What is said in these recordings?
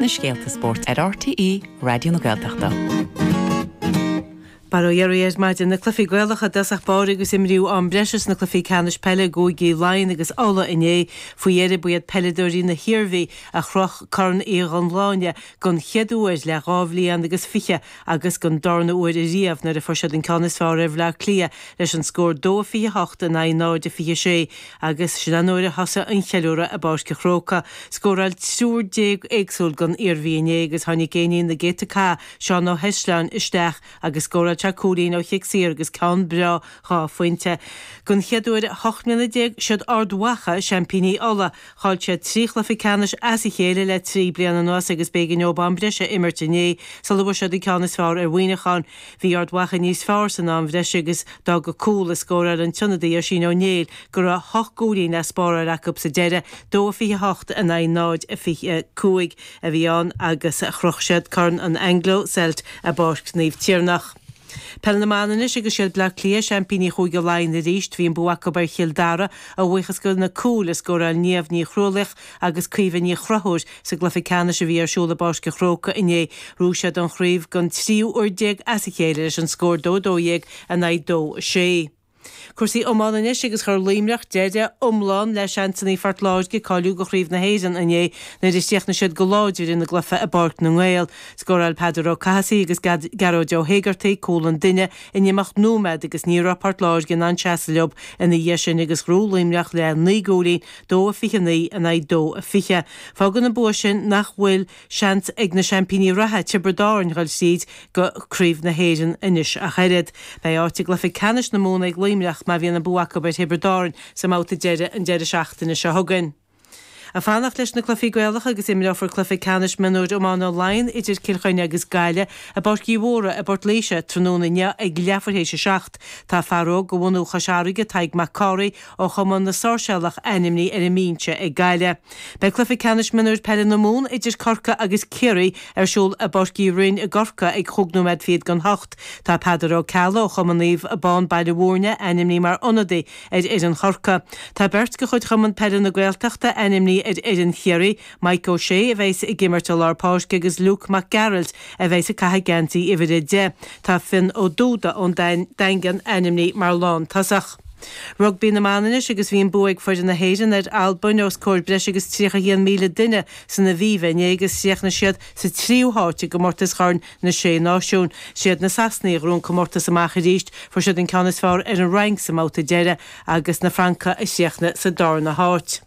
na scéalta spóirt ar RTÉ Raidió na Gaeltachta. Mora dhaoibh ar maidin, na cluichí Gaelacha i dtosach báire agus imríodh am breise sna cluichí ceannais peile i gcúigí Laighean agus Uladh inné. Faoi dheireadh, ba iad peileadóirí na hIarmhí a chroch Corn Uí Dhubhshláine den chéad uair le dhá bhliain agus fiche agus den darna uair riamh nuair a fuair siad an ceann is fearr ar Bhleá Cliath leis an scór 2 28 in aghaidh 0 26. Agus sin an uair a thosaigh an cheiliúradh i bPáirc a' Chrócaigh. Scóráil triúr déag éagsúil don Iarmhí inné agus tháinig éinín na gcéadta cath, Seán Ó hEisleáin, isteach agus scóráil sé cúilín ó chic saor agus ceann breá dhá phointe. Don chéad uair i hocht mbliana déag, 'siad Ard Mhacha seaimpíní Uladh. Chaill siad trí chluiche ceannais as a chéile le trí bliana anuas agus b'éigean dóibh am breise a imirt inné sula bhfuair siad an ceann is fearr ar Mhuineachán. Bhí Ard Mhacha níos fearr san am bhreise agus d'fhág cúl a scóráil an t-ionadaí Oisín Ó Néill go raibh hocht gcúilín le spáráil acu sa deireadh, dó a 28 in aghaidh 0 a 25 a bhí ann, agus chroch siad Corn an Anglo Celt i bPáirc Naomh Tiarnach. Peil na mBan anois agus 'siad Bleá Cliath seaimpíní Chúige Laighean arís. Bhí an bua acu ar Chill Dara a bhuíochas do na cúil a scóráil Niamh Ní Chrualaoich, agus Caoimhe Ní Chonchúir sa gcluiche ceannais a bhí ar siúl i bPáirc a' Chrócaigh inné. Ghnóthaigh siad an chraobh don tríú uair déag as a chéile leis an scór dó 12 in aghaidh dó 6. Cúrsaí iomána anois agus chuir Luimneach deireadh iomlán le seansannaí Phort Láirge cáiliú do Chraobh na hÉireann inné nuair a chríochnaigh siad go láidir ina gcluiche i bPáirc na nGael. Scóráil Peadar Ó Cathasaigh agus Gearóid Ó hÉigeartaigh cúl an duine in imeacht nóiméad agus ní raibh Port Láirge in ann seasamh leo ina dhiaidh sin agus ghnóthaigh Luimneach le naoi gcúilín dó a fiche a naoi in aghaidh dó a fiche. Fágann an bua sin nach bhfuil seans ag na seaimpíní reatha, Tiobraid Árainn, dul tríd go Craobh na hÉireann anois ach oiread. Beidh áit i gcluiche ceannais na Mumhan ag Luimneach má bhíonn an bua acu ar Thiobraid Árainn sa mbabhta deiridh an deireadh seachtaine seo chugainn. Ag fanacht leis na cluichí Gaelacha agus imreofar cluiche ceannais mionúir iomána Laighean idir Cill Chainnigh agus Gaillimh i bPáirc Uí Mhórdha i bPort Laoise tráthnóna inniu ag leathuair théis a seacht. Tá fear óg de bhunadh Chois Fharraige, Tadhg Mac Cárthaigh, ó Chumann na Sáirséalach ainmnithe ar an mbinse ag Gaillimh. Beidh cluiche ceannais mionúir peile na Mumhan idir Corcaigh agus Ciarraí ar siúl i bPáirc Uí Rinn i gCorcaigh ag chúig nóiméad fichead don hocht. Tá Peadar Ó Ceallaigh ó Chumann Naomh Abán Baile Mhúirne ainmnithe mar ionadaí ar fhoireann Chorcaí. Tá beirt de chuid Chumann Peile na Gaeltachta ainmnithe ar fhoireann Chiarraí, Maidhc Ó Sé a bheas ag imirt i lár páirc agus Luke Mac Gearailt a bheas ag caitheamh geansaí uimhir a deich. Tá Fionn Ó Dúda ón Daingean ainmnithe mar lántosach. Rugbaí na mBan anois agus bhí an bua ag foireann na hÉireann ar Albain os comhair breis agus 31,000 duine san Aviva inné agus chríochnaigh siad sa tríú háit i gcomórtas Chorn na Sé Náisiún. Siad na Sasanaigh a ghnóthaigh an comórtas amach arís, fuair siad an ceann is fearr ar an Fhrainc sa mbabhta deiridh agus na Francaigh a chríochnaigh sa darna háit.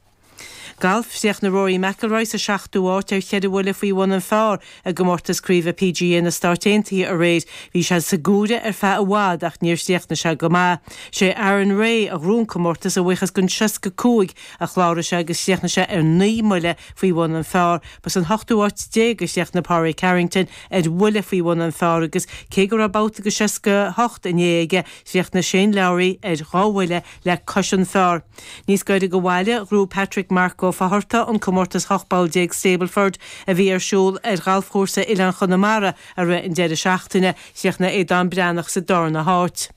Galf, Chríochnaigh Rory McIlroy sa seachtú áit ar cheithre bhuille faoi bhun an phar i gcomórtas craoibhe PGA na Stát Aontaithe aréir. Bhí sé sa gcomhaireamh ar feadh i bhfad ach níor chríochnaigh sé go maith. Sé Aaron Rai a ghnóthaigh an comórtas a bhuíochas den 65 a chláraigh sé agus chríochnaigh sé ar naoi mbuille faoi bhun an phar. Ba san hochtú áit déag a chríochnaigh Pádraig Harrington ar bhuille faoi bhun an phar agus cé go raibh babhta go 68 inné aige, chríochnaigh Shane Lowry ar dhá bhuille le cois an phar. Níos gaire go bhaile, ghnóthaigh Patrick Mark Ó Fátharta an comórtas 18 bpoll Stableford a bhí ar siúl ar ghalfchúrsa Oileáin Chonamara i rith an deireadh seachtaine, chríochnaigh Aodán Breathnach sa darna háit.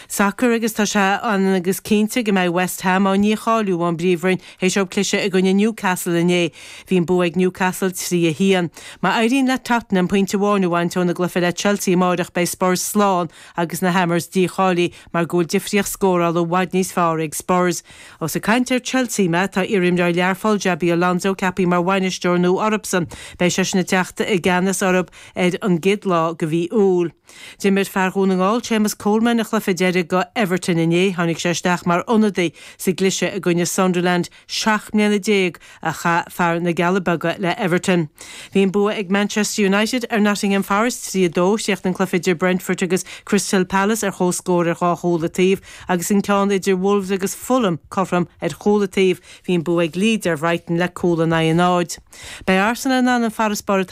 Sacar agus tá sé ionann agus cinnte go mbeidh West Ham á ndícháiliú ón bPríomhroinn théis dóibh cliseadh i gcoinne Newcastle inné. Bhí an bua ag Newcastle trí a haon. Má éiríonn le Tottenham pointe amháin a bhaint óna gcluiche le Chelsea amáireach beidh Spurs slán agus na Hammers dícháilithe. mar go bhfuil difríocht scórála i bhfad níos fearr ag Spurs. Ós ag caint ar Chelsea mé, tá iarimreoir Learphoill, Xabi Alonso, ceapthaí mar bhainisteoir nua orthusan. Beidh seisean ag teacht i gceannas orthu ar an gcéad lá de mhí Iúil. D'imir fear Dhún na nGall, Séamus Coleman, a chluiche deiridh go Everton inné. Tháinig sé isteach mar ionadaí sa gcliseadh i gcoinne Sunderland. Seacht mbliana déag a chaith fear na gCealla Beaga le Everton. Bhí an bua ag Manchester United ar Nottingham Forest trí a dó, chríochnaigh an cluiche idir Brentford agus Crystal Palace ar chomhscór ar dhá chúl an taobh, agus an ceann idir Wolves agus Fulham cothrom ar chúl an taobh. Bhí an bua ag Leeds ar Bhrighton le cúl in aghaidh an náid. Beidh Arsenal in ann an farasbarr atá